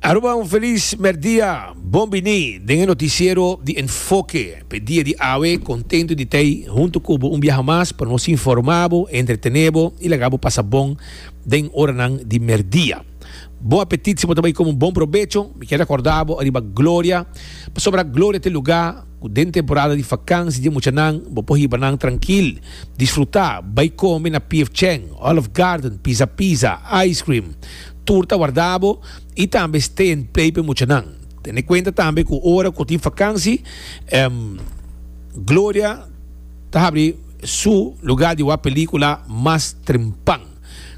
Aruba un felis merdia, bon bini den e noticiero di Enfoke p'e dia di awe, contento di t'ey hunto cu bo un biaha mas pa nos informa bo, entretene bo y laga bo pasa bon den oranan di merdia. Bon apetit si bo ta bay come un bon probecho, mi kier recorda bo ariba Gloria, pasobra Gloria t'e luga cu den temporada di vakansi dje muchanan bo por hiba nan trankil, disfruta, bay come na PF Chang, Olive Garden, Pizza Pizza, Ice Cream, tur ta warda bo y tambe stay and play p'e muchanan. Tene cuenta tambe cu ora cu tin fakansi em Gloria ta habri su lugar di wak pelicula mas trempan.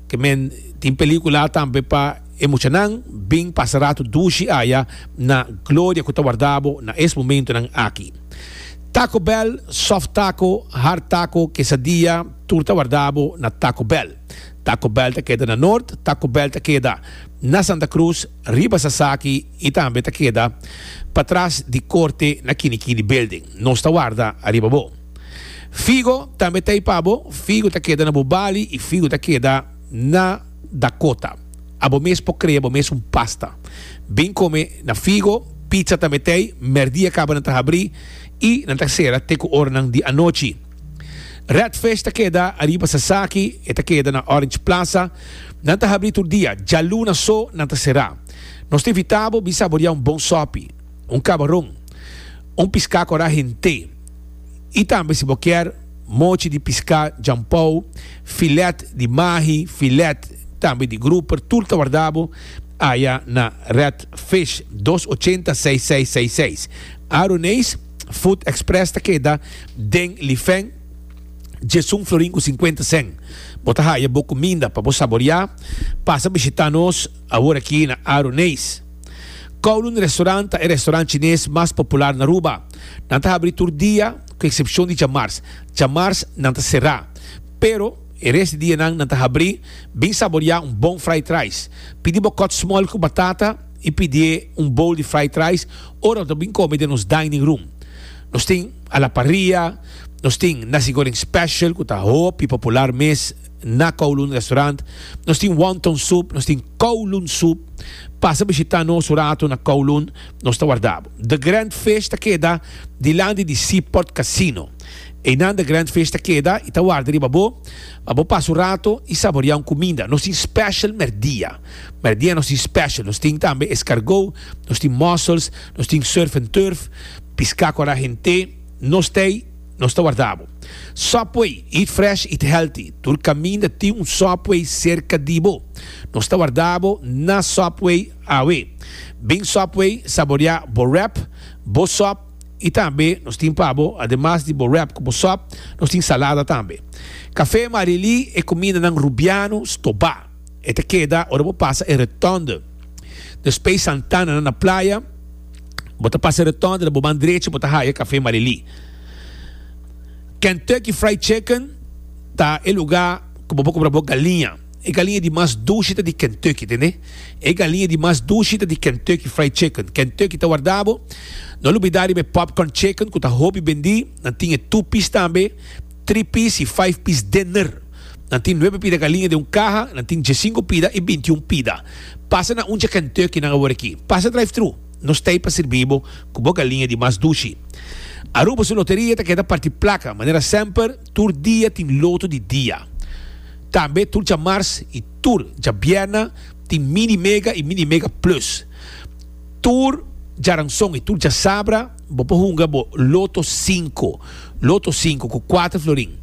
Ke men tin pelicula tambe pa e muchanan. Bin pasa ratu dushi aya na Gloria cu ta warda bo na es momentonan aki. Taco Bell, soft taco, hard taco, quesadilla, tur ta warda bo na Taco Bell. Taco Bell ta keda na Noord, Taco Bell ta keda na Santa Cruz, riba Sasaki y tambe ta keda patras di Corte na Kinikini Building. Nos ta warda ariba bo. Figo tambe ta ey pa bo, Figo ta keda na bo bali y Figo ta keda na Dakota. Abo mes por crea bo mes un pasta. Bin come na Figo, pizza tambe ta ey, merdia caba nan ta habri y nan ta cera te cu oranan di anochi. Redfish ta keda ariba Sasaki, e ta keda na Orange Plaza. Nan ta habri tur dia, djaluna so nan ta será. Nos ta invitá bo bin saboriá un bon sòpi, un kabaron, un piská korá hent'é i tambe si bo kier mochi di piská djampou, filèt di mahi, filèt tambe di gruper, tur ta wardá bo aya na Redfish, dos ochenta seis seis seis seis Aroneis. Food Express ta keda den Lifeng, Jesun Florin ku sinkuenta sen. Bo ta haya bo kuminda pa bo saboriá. Pasa bishitá nos awor aki na Aro Neis. Kowloon Restaurant ta e restaurant chines mas popular na Aruba. Nan ta habri tur dia ku eksepshon di djamars. Djamars nan ta será. Pero e res di dianan nan ta habri. Bin saboriá un bon fried rice. Pidi bo kòt smòl ku batata. i pidié un bowl di fried rice ora nan ta bin kome den nos dining room. Nos tin a la parrilla, nos tin nasi goreng special ku ta hopi popular mes na Kowloon restaurant, nos tin wonton soup, nos tin Kowloon soup. Pasa bishita nos un ratu na Kowloon, nos ta warda bo. The Grand Fish ta keda dilanti di Seaport Casino. Einan The Grand Fish ta keda i ta warda riba bo pa bo pasa un ratu i saborea un kuminda. Nos tin special merdia. Pero dia nos tin special, nos tin tambe escargot, nos tin mussels, nos tin surf and turf, pisca cu a ra hente, nos tey, nos ta warda bo. Subway, eat fresh, eat healthy, tur caminda tin un Subway cerca di bo. Nos ta warda bo na Subway awe. Bin Subway saborea bo wrap, bo sop y tambe nos tin pa bo ademas di bo wrap cu bo sop, nos tin salada tambe. Cafe Marilí e cumindanan Rubiano, Stobá. E ta keda ora bo pasa e Rotonde. Despey Santana nan na playa, bo ta pasa e Rotonde na bo man drechi bo ta haya Cafe Marily. Kentucky Fried Chicken ta e luga cu bo por compra bo galiña. E galiña di mas dushi ta di Kentucky, tende? E galiña di mas dushi ta di Kentucky Fried Chicken. Kentucky ta warda bo. No lubida riba e Popcorn Chicken cu ta hopi bendi. Nan tin e Tupis tambe. Tri pis i five pis denner. Nan tin nuebe pida ka liña den un kaha, nan tin diesinco pida i bintiun pida. Pasa na un dje Kentucky nan a wor aki. Pasa drive-thru. Nos ta ei pa sirbi bo cu bo ka liña di mas dushi. Aruba su loteria ta keda parti placa, manera semper, tur dia tin loto di dia. Tambe tur djamars i tur djabierna tin Mini Mega i Mini Mega Plus. Tur djaranson i tur djasabra. Bo por hunga bo loto sinku, Lotto sinku, ku kuater florin.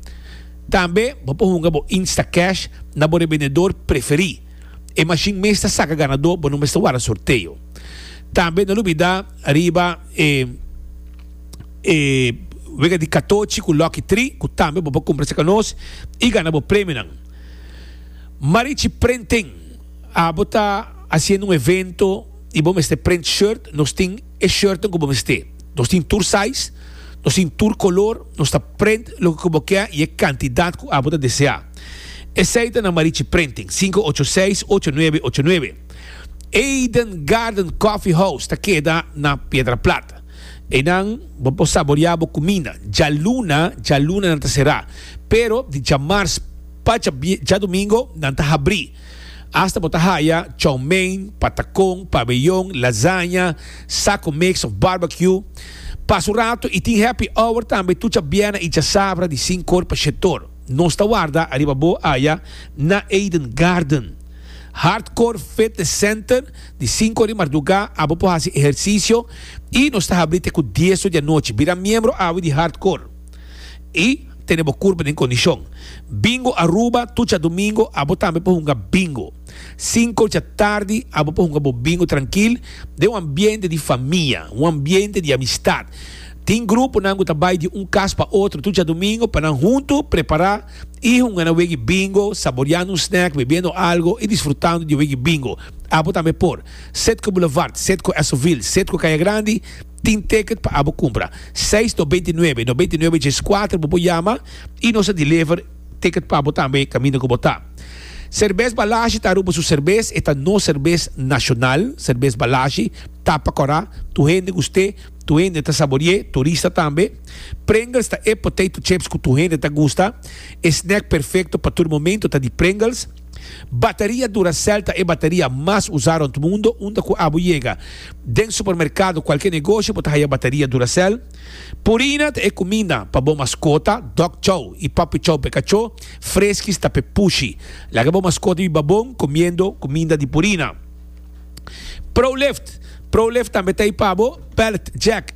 Tambe bo por hunga bo Instacash na bo rebendedor preferí. E mashin mes ta saka ganadó, bo no mester wara sorteo. Tambe no lubidá riba e e wega di katochi ku lòki tri ku tambe bo por kumpra cerka nos i gana bo premionan. Marichi Prenting, abo ta hasiendo un evento i bo mester prent shirt, nos tin. E shirtnan ku bo mester. Nos tin tur size, nos tin tur kolor, nos ta print loke ku bo ke i e kantidat ku abo ta deseá. Esei ta na Marichi Printing, sinku ocho seis, ocho nuebe, ocho nuebe. Eden Garden Coffee House ta keda na Piedraplat. Einan bo por saboreá bo kuminda. Djaluna, djaluna nan ta será, pero di djamars pa djadomingo nan ta habrí. Asta bo ta haya chow mein, patacon, pabellon, lasaña, saco mix of barbecue. Pasa un rato y tin happy hour tambe tur chabiena y chasabra di sin cor pa shetor. Nos ta warda ariba bo aya na Eden Garden. Hardcore Fitness Center, di cinco di marduga a bo por haci ehercicio y nos ta habri te cu dieso di anochi. Bira miembro awe di Hardcore. y tene bo curpa den condicion. Bingo Aruba, tucha domingo abo tambe por hunga bingo. Cinco dja tardi abo por hunga bo bingo trankil den un ambiente di famia, un ambiente di amistad. Tin gruponan cu ta bay di un cas pa otro tucha domingo pa nan hunto prepara y hunga nan wegui bingo, saboreando un snack, bebiendo algo y disfrutando di e wegui bingo. Abo tambe por Citgo Boulevard, Citgo Esoville, Citgo Caya Grandi. Tin ticket pa abo cumpra. Seis no beinti nuebe no beinti nuebe djes cuater bo por yama y nos a deliver ticket pa bo tambe caminda cu bo ta. Cervez Balashi ta Aruba su cervez, e ta nos cervez nacional, Cervez Balashi, ta pa cora, tur hende guste, tur hende ta saborie, turista tambe. Pringles ta e potato chips cu tur hende ta gusta, e snack perfecto pa tur momento ta di Pringles. Bateria Duracell ta e bateria mas usá rond mundo. Unda ku abo yega den supermerkado, kualke negoshi, bo ta haya bateria Duracell. Purina ta e kuminda pa bo maskota, Dog Chow i Puppy Chow p'e kachó, Friskies ta p'e pushi. Laga bo maskota biba bon kumiendo kuminda di Purina. Pro Lift Pro Lift tambe ta ei pa bo, Pallet Jack.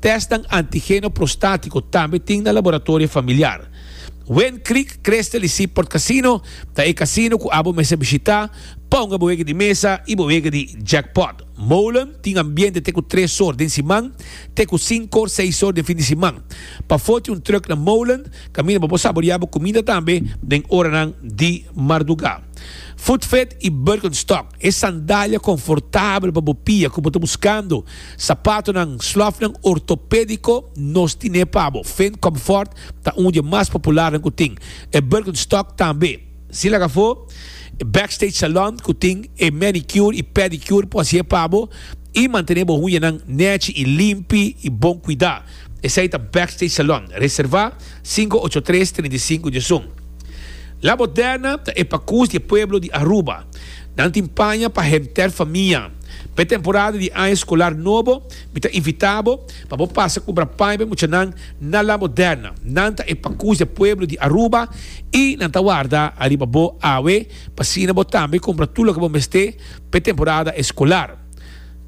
Tèstnan antigeno prostátiko tambe tin na laboratorio familiar. Wind Creek Crystal i Seaport Casino ta e casino ku abo mester bishitá pa hunga bo wega di mesa i bo wega di jackpot. Molen tin ambiente te ku tres sor den siman te ku sinko, seis sor den fin di siman. Pa foti un truck na Molen kaminda pa bo saboriá bo kuminda tambe den oranan di mardugá. Footfit i Birkenstock, e sandalia konfortabel pa bo pia ku bo ta buskando, Sapatonan, slofnan ortopédiko, nos tin'é pa bo. Fendt Comfort ta un di e mas popularnan ku tin. E Birkenstock tambe. Sin laga afó, e Backstage Salon ku tin e manicure i pedicure por hasié pa bo i mantené bo uñanan nèchi i limpi i bon kuidá. Esei ta Backstage Salon. Reservá. Sinku ocho tres treinta i sinku di esun. La Moderna ta e pakus di e pueblo di Aruba. Nan tin paña pa henter famia. Pa e temporada di aña skolar nobo mi ta invita bo pa bo pasa kumbra paña pa e muchanan na La Moderna. Nan ta e pakus di e pueblo di Aruba i nan ta warda ariba bo awe pa asina bo tambe kumbra tur loke bo mester pa e temporada eskolar.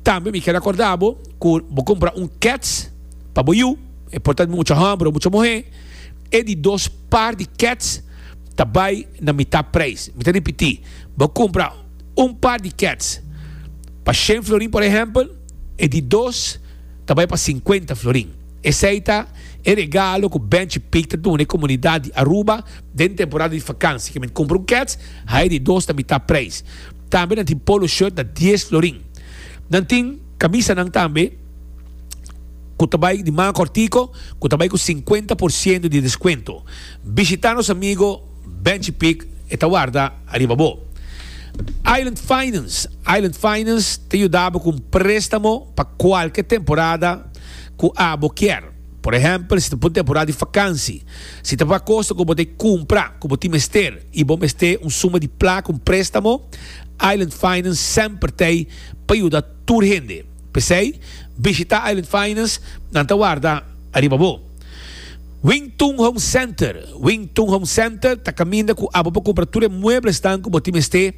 Tambe mi ker akorda bo ku bo kumpra un kèts pa bo yu. e por ta mucha homber o mucha muhe, e di dos par di kets ta bai na mita prijs. Mi ta ripiti, bo kumpra un par di kets pa shen florin por ehempel, e di dos ta bai pa sinkuenta florin. Esei ta e regalo ku Benchi Pig ta duna e komunidat di Aruba den temporada di fakansi. Kimen kumpra un kets, haña e di dos na mita prijs. Tambe nan tin polo shirt na dies florin. Nan tin kamisanan tambe. ku ta bai di manga kòrtiku ku ta bai ku sinkuenta por siento di deskuento. Bishitá nos amigo Benchi Pic, e ta warda ariba bo. Island Finance, Island Finance ta yuda bo ku un préstamo pa kualke temporada ku abo kier. Por ehèmpel, si ta pa un temporada di fakansi, si ta pa kosa ku bo ta e kumpra ku bo tin mester i bo mester un suma di plaka, un préstamo, Island Finance semper ta ei pa yuda tur hende. P'esei, bishita Island Finance, nan ta warda ariba bo. Wing Tung Home Center, Wing Tung Home Center ta kaminda ku abo pa kumpra tur e mueblesnan ku bo tin mester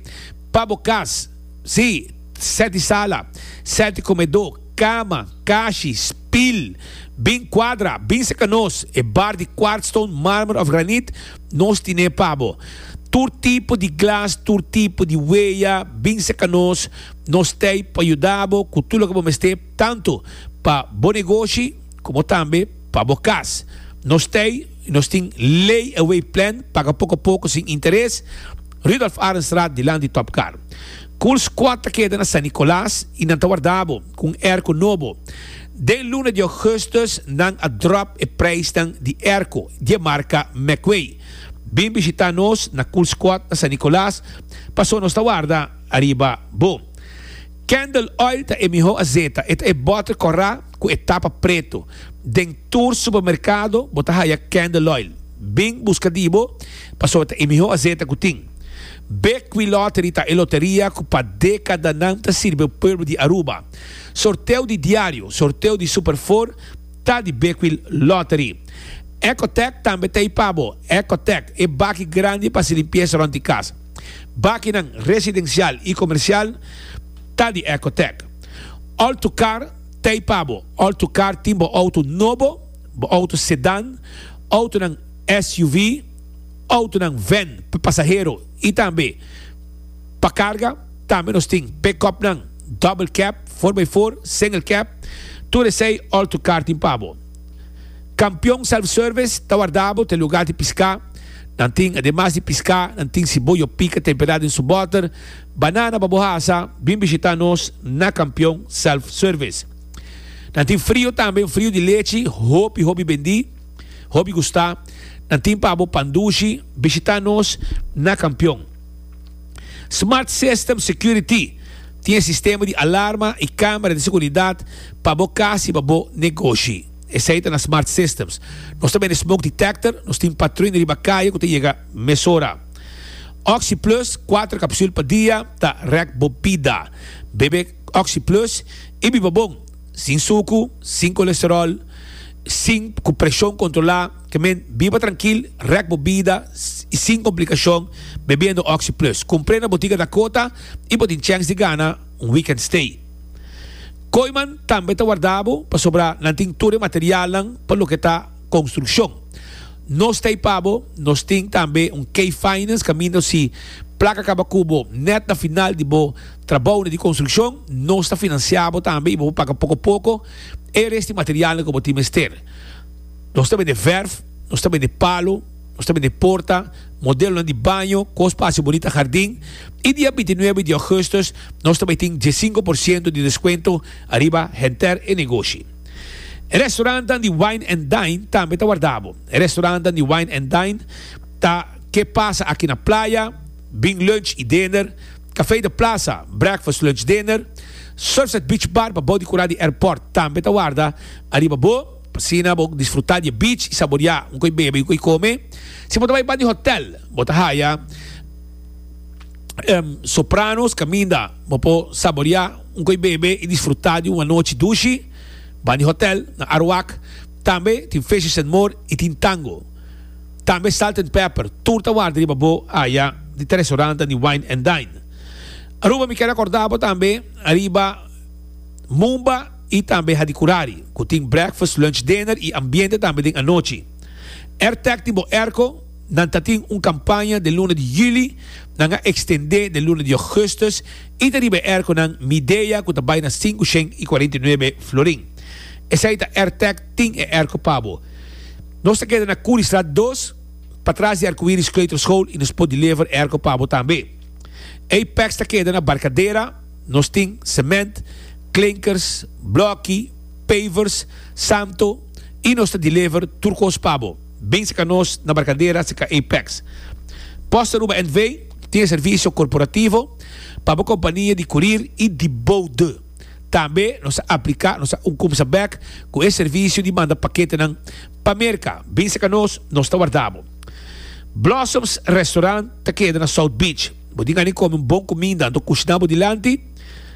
pa bo kas. Sí, sèti sala, sèti komedó, kama, kashi, spil, bin kuadra, bin sekanos, e bar di kwartstone, marmer òf granit, Nos tine pa bo. Tur tipo di glas, tur tipo di weya, bin seka nos. Nos t'ei pa yuda bo cu tur loke bo mester, tanto pa bo negoshi como tambe pa bo cas. Nos t'ei y nos tin ley away plan, paga poco a poco sin interes. Rudolph Arenstraat dilant di Top Car. Cool Squad ta keda na San Nicolas y nan ta warda bo cu un airco nobo. Den luna di Augustus nan a drop e prijsnan di erko di e marka Meckway. Bin bishita nos na Cool Squad na San Nicolas paso nos ta warda ariba bo. Candle Oil ta e miho azeta, e ta e botter corra cu e tapa preto. Den tur supermercado bo ta haya Candle Oil. Bin busca di bo paso e ta e miho azeta cu tin. Bekwylottery ta e loteria cu pa decadanan ta sirbi pueblo di Aruba. Sorteo di diario, sorteo di Super Four ta di Bekwil Lottery. Ecotec tambe ta ei pa bo. Ecotec, e baki grandi pa hasi limpiesa rond di kas. Bakinan residencial y comercial ta di Ecotec. All to Car ta ei pa bo. All to Car tin bo auto nobo, bo auto sedan, autonan SUV, autonan van pa pasahero y tambe. Pa karga tambe nos tin pekòpnan double cab, four by four, single cab, tur esei òl tur kar tin pa bo. Kampion Self Service ta warda bo te lugá di piská, nan tin ademas di piská nan tin siboyo pika temperá den su bòter, banana pa bo hasa, bin bishitá nos na Kampion Self Service. Nan tin frio tambe, un frio di lechi hopi hopi bendí, hopi gustá, nan tin pa bo pan dushi, bishitá nos na Kampion. Smart System Security tin e sistema di alarma i camera di seguridat pa bo cas i pa bo negoshi. Esei ta na Smart Systems. Nos ta bende smoke detector, nos tin patruin riba caye cu ta yega mesora. Oxy Plus, cuater capsul pa dia, ta rek bo bida. Bebe Oxy Plus i biba bon, sin sucu, sin colesterol, sin cu presion controla. Kemen, biba trankil, rèk bo bida i sin komplikashon bebiendo Oxi Plus. Kumpr'é na Botiga Dakota i bo tin chèns di gana un weekend stay. Koiman tambe ta warda bo pasobra nan tin tur e materialnan pa loke ta konstrukshon. Nos ta ipa bo, nos tin tambe un K Finance kaminda si plaka kaba ku bo nèt na final di bo trabounan di konstrukshon, nos ta finansiá bo tambe i bo por paga poko poko e resti materialnan ku bo tin mester. Nos ta bende verf, nos ta bende palo, nos ta bende porta, modelonan di baño, kos pa hasi bunita hardin, i dia bintinuebe di ougustus nos ta bai tin diesinko por siento di deskuento ariba henter e negoshi. E restorannan di Wine and Dine tambe ta warda bo. E restorannan di Wine and Dine ta Ke Pasa Aki Na Playa, Bing Lunch i Dinner, Café de Plaza, Breakfast Lunch Dinner. Surfside Beach Bar pabou di kura di airport tambe ta warda ariba bo. Asina bo disfrutá di e beach i saboriá un koe bebe i un koe kome. Si bo ta bai pa di hotèl, bo ta haya Sopranos kaminda bo por saboriá un koe bebe i disfrutá di un anochi dushi. Ban di hotèl na Arawak tambe tin Fishes and More i tin Tango. Tambe Salt and Pepper. Tur ta warda riba bo aya di ta restorantenan di Wine and Dine. Aruba mi ker akordá bo tambe riba Mumba. y tambe ha di curari, cu tin breakfast, lunch, dinner y ambiente tambe den anochi. Airtech tin bo airco, nan ta tin un campaña den luna di juli, nan a extende den luna di augustus y ta riba e airco nan Midea cu ta bay na sinku shen y cuarenta y nuebe florin. Esai ta Airtech tin e airco pa bo. Nos ta keda na Curiestraat dos, patras di Arcoiris Kleuterschool y nos por deliver airco pa bo tambe. Apex ta keda na Barcadera. Nos tin cement, klinkers, blokki, pavers, samto y nos ta deliver tur cos pa bo. Bin cerca nos na Barcadera cerca Apex. Post Aruba NV. tin e servicio corporativo pa bo compania di curir y di bou de. Tambe nos a aplica nos a un cumsa bek cu e servicio di manda paketenan pa Merca. Bin cerca nos, nos ta warda bo. Blossoms Restaurant ta keda na South Beach. Bo tin gana di kome un bon kuminda, anto kushná bo dilanti.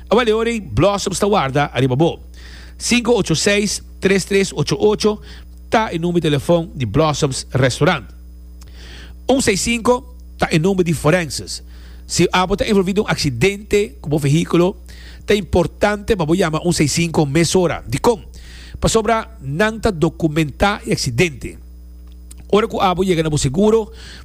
A bale ora ei, Blossoms ta warda ariba bo. Sinku ocho seis, tres tres ocho ocho ta e number di telefòn di Blossoms Restaurant. Un seis sinku ta e number di Forenses. Si abo ta envolví den un aksidente ku bo vehíkulo, ta importante pa bo yama un seis sinku mesora. Dikon? Pasobra nan ta dokumentá e aksidente. Ora ku abo yega na bo seguro.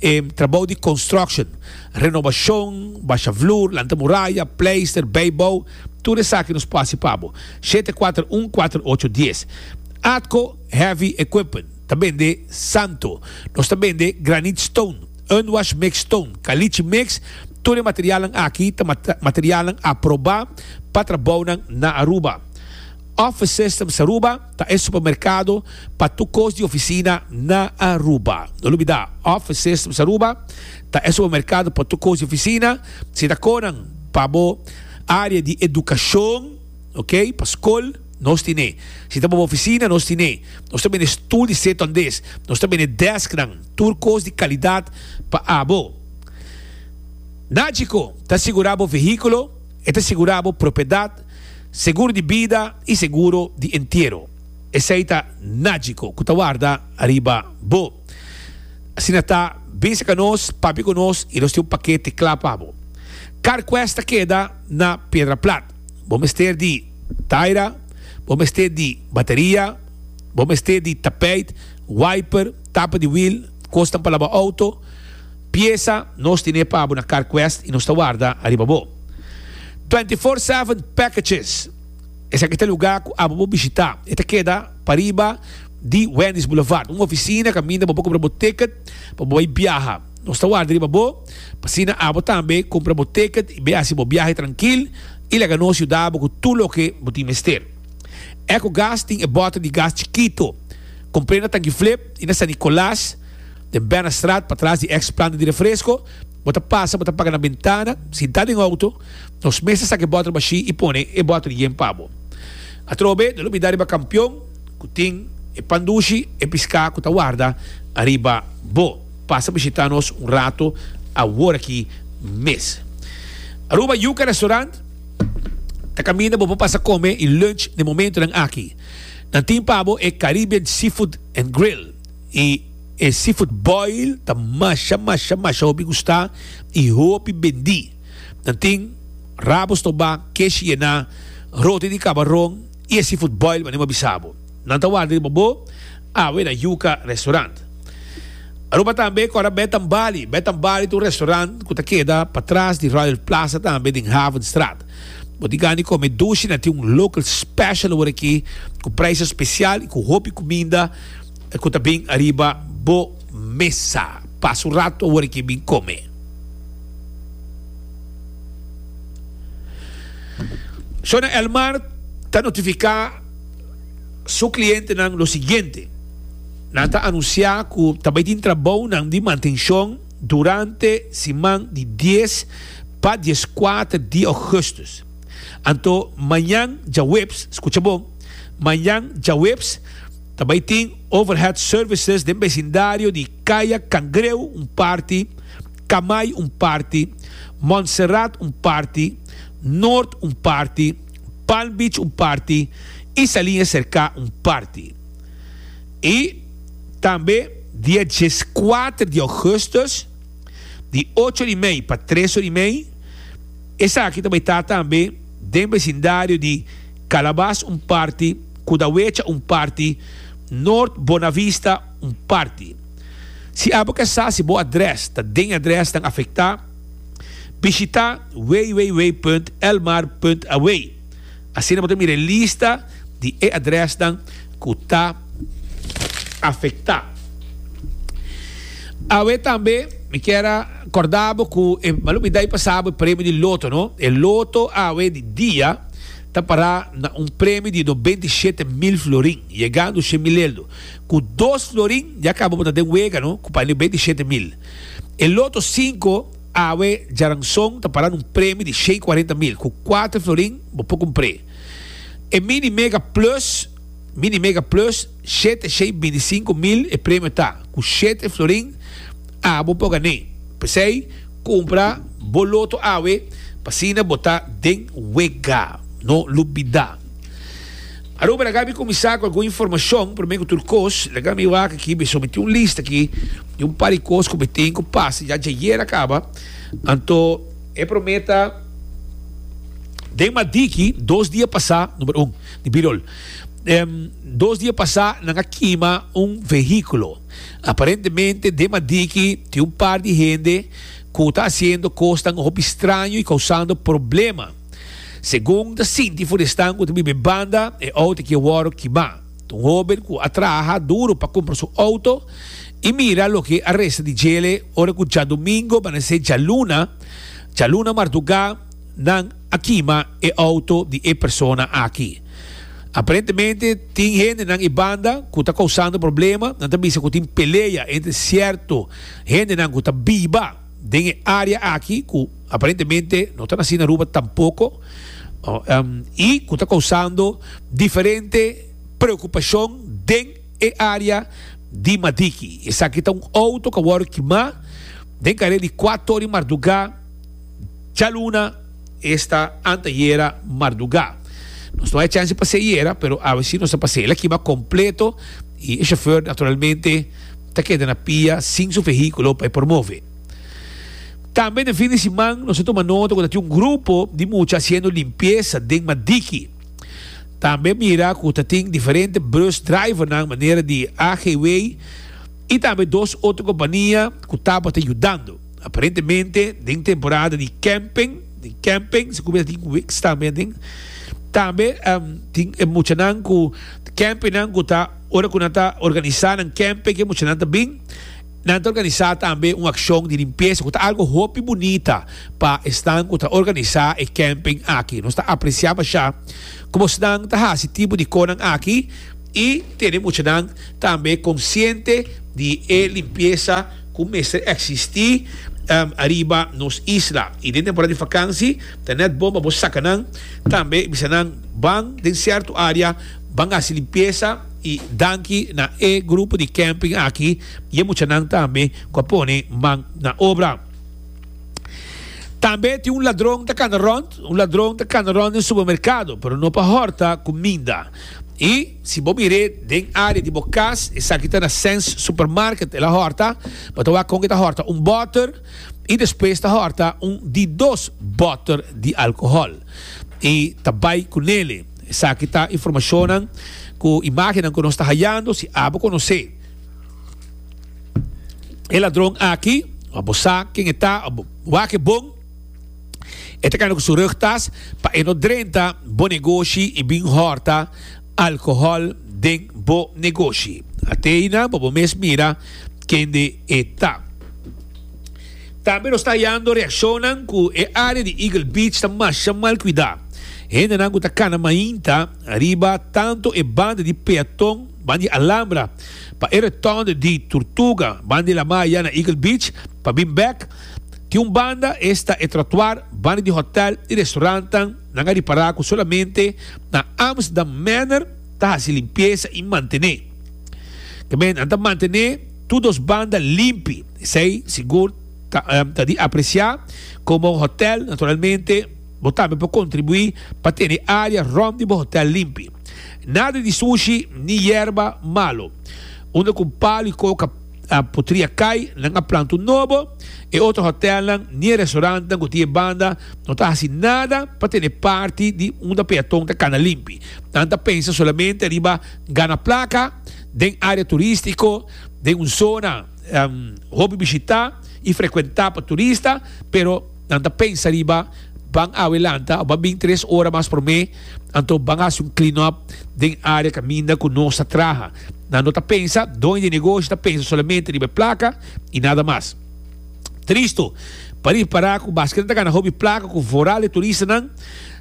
E trabou di construction, renobacion, basha vloer, lanta muraya, pleister, bijbou, tur esaki nos por haci pa bo. Shete kuater un kuater ocho dies. Atco Heavy Equipment ta bende Santo. Nos ta bende granite stone, unwash mix stone, caliche mix, tur e materialnan aki ta materialnan aproba pa trabounan na Aruba. Office Systems Aruba. Ta e supermercado pa tur cos di oficina na Aruba. No lubida, Office Systems Aruba ta e supermercado pa tur cos di oficina. Si ta conan pa bo area di educacion, ok, pa scol, nos tin e. Si ta pa bo oficina, nos tin e. Nos ta bende stoel di seton des. Nos ta bende desknan, tur cos di calidad pa abo. Na Chico ta asegura bo vehiculo. E ta sigurá bo propiedat, seguro di bida i seguro di entiero. Esei ta nájiko ku ta warda ariba bo. Asina ta, binse ka nos, papia ku nos i nos tin un pakete kla pa bo. Carquest ta keda na Piedra Plat. Bo mester di taira, bo mester di bateria, bo mester di tapeit, wiper, tapa di wiel, kosnan pa laba outo, Pieza nos tine pa bo na Carquest y nos ta warda ariba bo. Twenty Four Seven Packages, Esaki ta lugar cu abo bo bishita. E ta keda pariba di Wendy's Boulevard, un oficina caminda bo por cumpra bo ticket pa bo bay biaha. Nos ta warda riba bo, p'asina abo tambe cumpra bo ticket y bay haci bo biahe trankil y laga nos yuda bo cu tur loke bo tin mester. Ecogas tin e bote di gas chikito. Compr'e na Tanki Flip y na San Nicolas. Den Binnenstraat, patras di ex planta di refresco, bo ta pasa, bo ta paga na bentana, sinta den auto, nos mes ta saca e bottle bashi y pone e bottle yen pa bo. Atrobe, no lo bida riba campion cu tin e pan dushi, e pisca cu ta warda ariba bo. Pasa bishita nos un rato aworaki mes. Aruba Yuca Restaurant ta caminda bo pa pasa come y lunch na e momentonan aki. Nan tin pa bo e Caribbean Seafood and Grill. Y e seafood boil ta masha masha masha hopi gusta y hopi bendi. Nan tin rabo stoba, kesh yena, roti di cabaron y e seafood boil mane bo a bisa bo. Nan ta warda riba bo awe na Yuca Restaurant. Aruba tambe kora Bed and Bali. Bed and Bali ta un restaurant cu ta keda patras di Royal Plaza tambe den Havenstraat. Bo tin gana di come dushi nan tin un local special awor aki cu prijsa special y cu hopi cuminda. ku ta bin ariba bo mesa. Pasa un ratu awor e kin bin kome. Shona Elmar ta notifiká su klientenan lo siguiente, Nan ta anunsiá ku ta bai tin trabounan di mantenshon durante siman di dies pa dieskuater di ougùstùs. Anto mañan djaweps, skucha bon, mañan djaweps ta bai tin Overhead Services den besindario di Kaya Kangreu un parti, Kamai un parti, Montserrat un parti, Noord un parti, Palm Beach un parti i Salinha Serká un parti. I tambe dia djes kuater di ougùstùs di ocho di mei pa tres or di mei, Esaki ta bai ta tambe den besindario di Calabas un parti, Cudahuecha un parti, Noord Bonavista un parti. Si abo ke sa si bo adres ta den e adres nan afekta, bishita www.elmar.aw. Asina bo ta mira e lista di e adrèsnan ku ta afektá. Awe tambe mi kier a kòrda bo ku e malumidá i pasá bo e premio di loto, no? E loto awe di dia ta pará na un premio di nobenta i shete mil florin, yegando shen mil eldu. Ku dos florin ya kaba bo ta den wega, no? Ku pa nobenta i shete mil. E loto sinku. Awe djaranson ta para na un premi di shei kuarenta mil ku kuater florin bo por kumpr'é. E Mini Mega Plus, Mini Mega Plus, shete shei binti sinku mil e premio ta, ku shete florin a bo por gan'é. P'esei, kumpra bo loto awe, p'asina bo ta den wega. No lubidá! Aruba laga mi kuminsá ku algun informashon. Promé ku tur kos, laga mi wak aki, mi sometí un lista aki di un par di kos ku mi tin ku pasa ya djayer a kaba. Anto. E promé ta, Den Madiki, dos dia pasá, Number un, di Birol. Den dos dia pasá nan a kima un vehíkulo. Aparentemente den Madiki tin un par di hende ku ta hasiendo kosnan hopi straño i kousando problema. Segun ta sinti Funestan ku ta biba e banda e outo ki a wòrdu kimá. Ta un hóben ku a traha duru pa kumpra su outo i mira loke a resta di djele ora ku djadumingu manesé djaluna djaluna mardugá nan a kima e outo di e persona aki. Aparentemente tin hendenan e banda ku ta kousando problema, nan ta bisa ku tin pelea entre sierto hendenan ku ta biba. Den e área aki ku aparentemente no ta nasi na Aruba tampoko i ku ta kousando diferente preokupashon den e área di Madiki. Esaki ta un outo ku a wòrdu kimá den karel di kua tor di mardugá djaluna. Esta anteayera marduga. Nos no bay chance pase ayera, pero awe si nos ta pase. El a kima completo y e chauffeur naturalmente ta keda na pia sin su vehiculo pa e por move. Tambe den fin di siman nos a tuma nota cu ta tin un grupo di mucha haciendo limpieza den Madiki. Tambe mira cu ta tin diferente bus drivernan manera di AGW y tambe dos otro compania cu tabata yudando. Aparentemente den temporada di camping, den camping si cu mester tin weeks tambe aden. Tambe tin e muchanan cu campingnan cu ta ora cu nan ta organisa nan camping cu e muchanan ta bin nan ta organisa tambe un accion di limpieza cu ta algo hopi bunita pa esnan cu ta organisa e camping aki. Nos ta aprecia masha como esnan ta haci tipo di conan aki y tene muchanan tambe consciente di e limpieza. ku mester eksistí ariba nos isla. I den temporada di fakansi ta nèt bon pa bo saka nan. Tambe i bisa nan ban den sierto área ban hasi limpiesa. I danki na e grupo di kèmping aki i e muchanan tambe ku a pone man na obra. Tambe tin un ladron ta kanda rònt, un ladron ta kanda rònt den supermerkado, pero no pa hòrta kuminda. I. Si bo mir'é den área di bo kas, esaki ta na Sens Supermarket, el a hòrta, bo ta wak kon ke ta hòrta un bòter i despues ta hòrta un di dos bòter di alkohòl i ta bai ku nele. Esaki ta informashonnan ku imágennan ku nos ta hayando. Si abo konosé e ladron aki, abo sa ken e ta, abo wak e bon. E ta kana ku su rug tas pa e no drenta bo negoshi i bin hòrta alkohòl den bo negoshi. Ateyna bo bo mes mira kende e ta. Tambe nos ta hayando reakshonnan ku e área di Eagle Beach ta masha mal kuidá. Hendenan ku ta kana mainta riba tantu e banda di peaton ban di Alhambra pa e retònde di Turtuga ban di La Maya na Eagle Beach pa bin bèk, Tin un banda esta e trotuar banda di hotel i restaurantenan nan a ripara ku solamente na Amsterdam Manor ta hasi limpiesa i mantené. Tambe nan ta mantené tur dos banda limpi, esei sigur ta di apresiá. Komo hotel, naturalmente bo tambe por kontribuí pa tene e área rònt di bo hotel limpi. Nada di sushi ni yerba malu. Unda ku un palu i koka. a putria cay, nan a planta un nobo, e otro hotelnan ni e restaurantnan cu tin e banda no ta haci nada pa tene parti di unda peaton ta cana limpi, nan ta pensa solamente riba gana placa den area turistico, den un zona hopi bishita y frecuenta pa turista, pero. Nan ta pensa riba ban awe lanta o ban bin tres ora mas promé, anto ban hasi un clean up den área kaminda ku nos ta traha. Nan no ta pensa, doño di negoshi ta pensa solamente riba e plaka i nada mas. Tristu, pa ripará ku baske nan ta gana hopi plaka ku voral e turistanan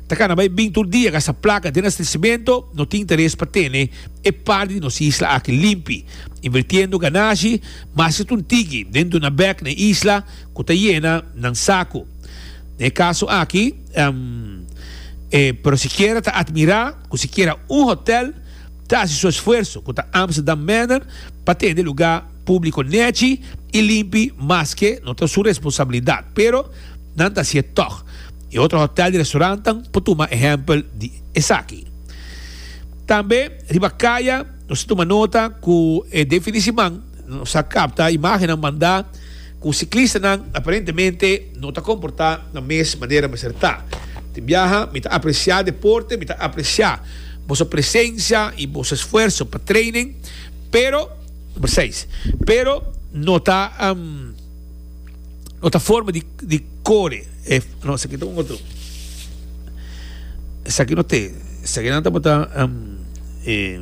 ta gana bai bin tur dia gasta plaka den astesimento, no tin interes pa tene e parti di nos isla aki limpi, invirtiendo ganashi mas ki tuntigi den duna bèk na e isla. Cu ta yena nan sacu. Na e caso aki, e pero sikiera ta admira cu sikiera un hotel ta haci su esfuerso, cu ta Amsterdam Manor, pa tende luga publico nechi y limpi maske no ta su responsabilidad. Pero nan ta haci'e tog. E otro hotel y restaurantan por tuma ehempel di esaki. Tambe riba caya nos ta tuma nota cu e definiciman nos a capta imagennan manda. Ku siklistanan aparentemente no ta komportá na mes manera mester ta. Tin biaha mi ta apresiá deporte, mi ta apresiá boso presensia i boso esfuerso pa training, pero, number seis, pero no ta no ta forma di di kore e no esaki ta un otro esaki no te esaki nan tabata e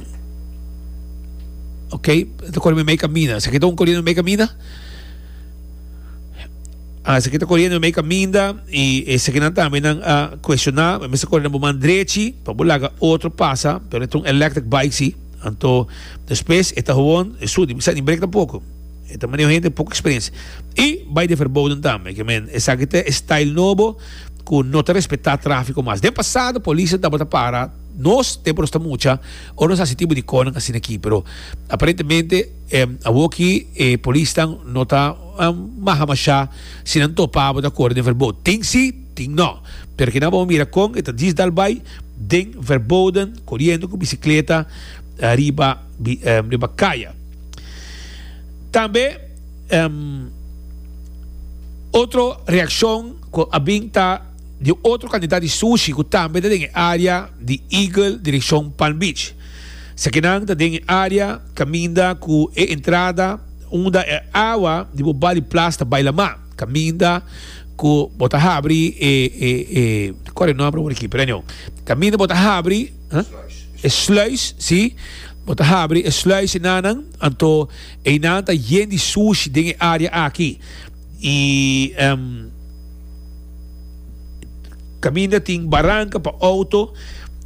ok ta kore mi mei kamina esaki ta un kore mi mei kamina. Ah, esaki ta corriendo mei caminda y esakinan tambe nan a cuestiona, me mester corre na bo man drechi, pa bo laga otro pasa, pero e ta un electric bike si, anto despues e ta gewoon e su, di sa ni break tampoco, e ta maneho hende poco experiencia. Y bay den verboden tambe, ke men esaki ta e style nobo cu no ta respeta trafico mas. Den pasado policia tabata para nos tempo nos ta mucha, ora nos hasi tipo di conan asina aki, pero aparentemente, Awoki e polisnan no ta maha mashá si nan topa abo ta kore den Verboden. Tin sí, tin nò. Pero kinan abo a mira kon e ta disdal bai den Verboden koriendo ku bisikleta riba riba kaya. Tambe otro reakshon ku a bin ta di otro kantidat di sushi ku tambe ta den e área di Eagle direkshon Palm Beach. Sekinan ta den e área kaminda ku e entrada unda e awa di bo bali plas ta bai lamá, kaminda ku bo ta habri e, e, e, ta kòrda e nòmber awor aki, pero anyhow, kaminda bo ta habri, ha? E sluis, sí, bo ta habri e sluis enanan, anto einan ta yen di sushi den e área aki. Y caminda tin baranca pa auto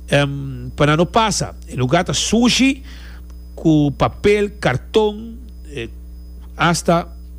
pa nan no pasa. E lugar ta sushi cu papel, carton, hasta.